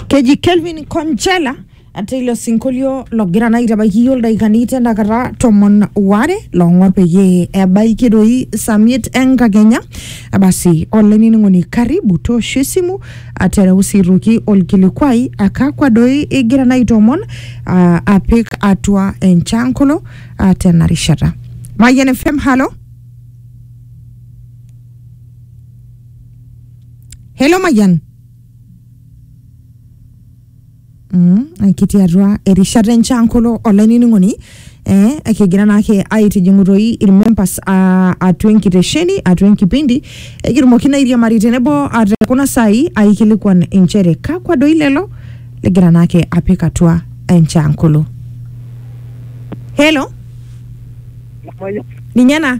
keji kelvin conchela ate ilo sinkolio logira naa aitabaiki iyiook ildaikani tenakata tomon waare loong'or peyie ebaiki doi samiet enkakenya basi olainining'oni karibu toosho esimu atereu sii aitoki olkilikuai akakwa doi igira naa aitoomon ah, apik atua enchankolo ah, tena rishata Mayian FM halo Hello Mayian Mm, ekitii atua erishata enchan kulo olainining'oni eh, ekigira naake aitijing'u toi irmembers ah, atua enkitesheni atua enkipindi ekitumoki naa airiamari tenebo ah, te kuna saai aikilikuan inchere kakwa doi lelo ligira naake apik atua enchan kulo helo ninye ena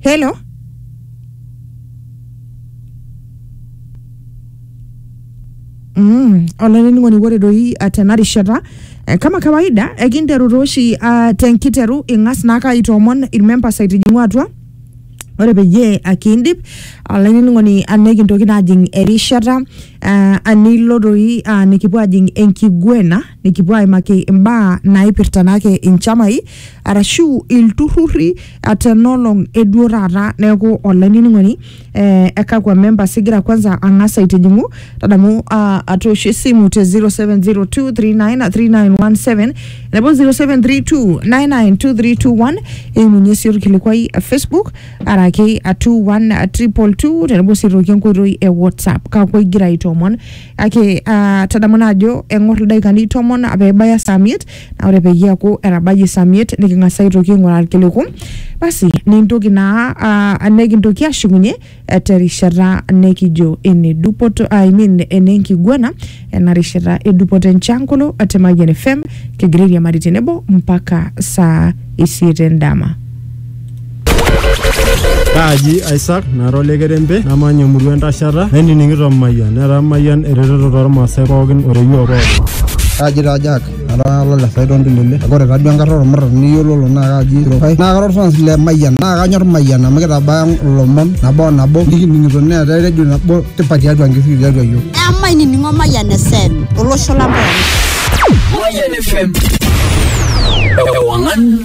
Hello. Mm, olainining'oni ore doi ah, tena rishata eh, kama kawaida ekinteru tooshi ah, tenkiteru ing'as naake aitoomon irmembers aitijing'u atua ore peyie akindip olainining'oni anikintoki naa ajing erishata ah, anilo doi ah, nikipuo ajing enkiguena nikipuo aimaki imbaa naipirta naake inchamai arashu ilturrurri ah, tenolong eduo taata neeku olainining'oni eh, ekakwa members igira kwanza ang'as aitijing'u tadamu ah, atoosho esimu te 0702393917 nebo 0732992321 eimunye sii orkilikuai eh, facebook araki 21222 tenebo sii aitoki enkoitoi e whatsapp kakwa igira aitoomon kake ah, tadamu naa ajo eng'or ildaikani tomon pee ebaya saa miet naa ore peyie eaku etabayie saa miet niking'as aitoki aing'uraa irkiliku basi nintoki naa ah, nikintoki ashukunye eh, terishata nikijo ene dupoto I mean ene nkiguana ena rishata e dupoto enchankolo te Mayian FM kigira airiamari tenebo mpaka saa isiet endama. Kaaji Isaac nara ole kerembe namanya emurua entashata nainining'ito Mayian netaa Mayian eretoto tormaasai pookin oreyioo pookin. Kaaji taa Jack ara olole Saidon Ndulele kake ore taduo enkarna ormurran niyiololo naa kaaji Sirokai naa kara orfans le Mayian naa kanyor Mayian amu kitabaya ilomon nabo o nabo nikining'ito neetae redio nabo tipat tiatua nkishui tiatua iyiook. Emainining'o Mayian FM olosho lang pooki. Mayian FM. Ewangan